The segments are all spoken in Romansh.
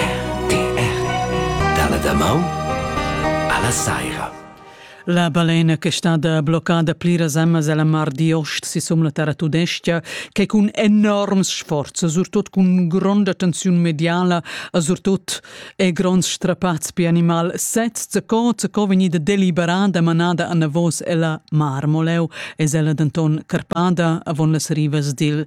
RTR dalla damaun alla saira. La balena che è stada bloccada pliras emmas alla mar di ost sisum la terra tudestga, che cun enorms sforz, surtut cun gronda tensiun mediala, surtut e gronds strappats per animal, sez co co vegnida deliberada, manada a navos ella marmoleu, es ella denton carpada avon las rivas dil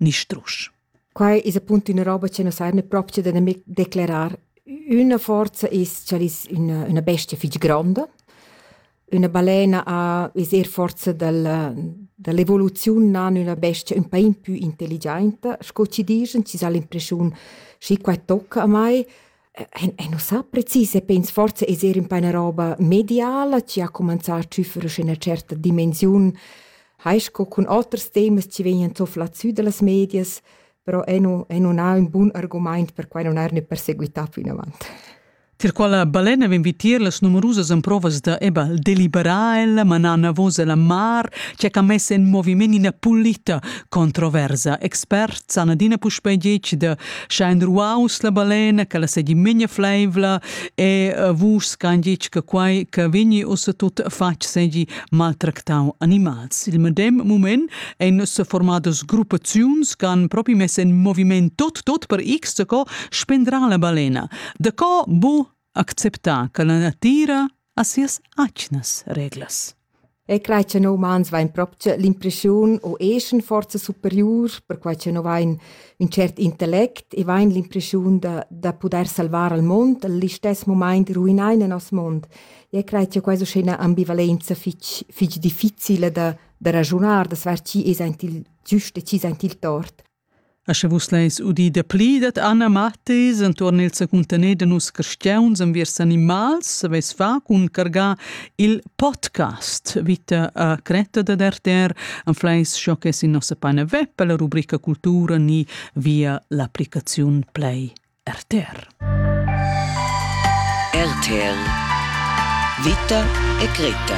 ni strusch. Quai es appunto üna roba che nus hain propcha da nemic declarar üna forza es cha'l es üna üna bestia fich gronda. Üna balena ha es eir forza dal da l'evoluziun nan üna bestia ün pa impü intelligiainta, sco chi dischan, chi s'ha l'impreschiun schi quai tocca a mai. Ein, ei nus sa precis e pens forza eser in paina roba mediala chi ha cumanzà a tschüffere sche ina certa dimensiun, hai sco cun oters temas chi vegnan zofla sü dallas medias, però ei nu, ei nun ha ün bun argumaint per quai non eir ne perseguità plinavant. Tier quella balena vegn vitier las numerusas emprovas da eba deliberar ella, manar navos alla mar, che ha mess en moviment ina pulita controversa. Expert san adina puspei detg da scha in ruaus la balena che la segi minja fleivla e uh, vus can ditg che quai che vini us tut fatg segi maltractau animals. Il medem moment en se formadas gruppaziuns can propi mess en moviment tot tot per x co spendra la balena. De co bu acceptà che la natira ha sias atgnas reglas. E crei che no umans vain proprio l'impressiun o eschen forza superior, perquai che no vain un cert intellect e vain l'impressiun da, da poder salvar al mond, all'istess moment ruinar il nostro mondo. E crei che questa è un'ambivalenza fitch, fitch difficile da, da ragionare, da saper chi è il giusto e chi è il tort. E sche vus leis udir dapli dad Anna Mathis entuorn il secuntener da nus cristiauns enviers animals, saveis fa cun cargar il podcast vita a Creta da RTR anfleis sco che sin nossa pagina web per la rubrica cultura ni via l'applicaziun Play. RTR. RTR Vita e Greta.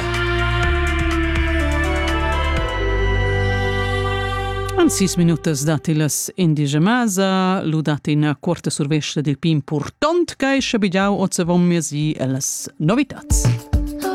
An sis minutas datti las indigemasa, ludat ina quarta survesta dil pin purtont che schabigiau oz avon mesi e las novitats.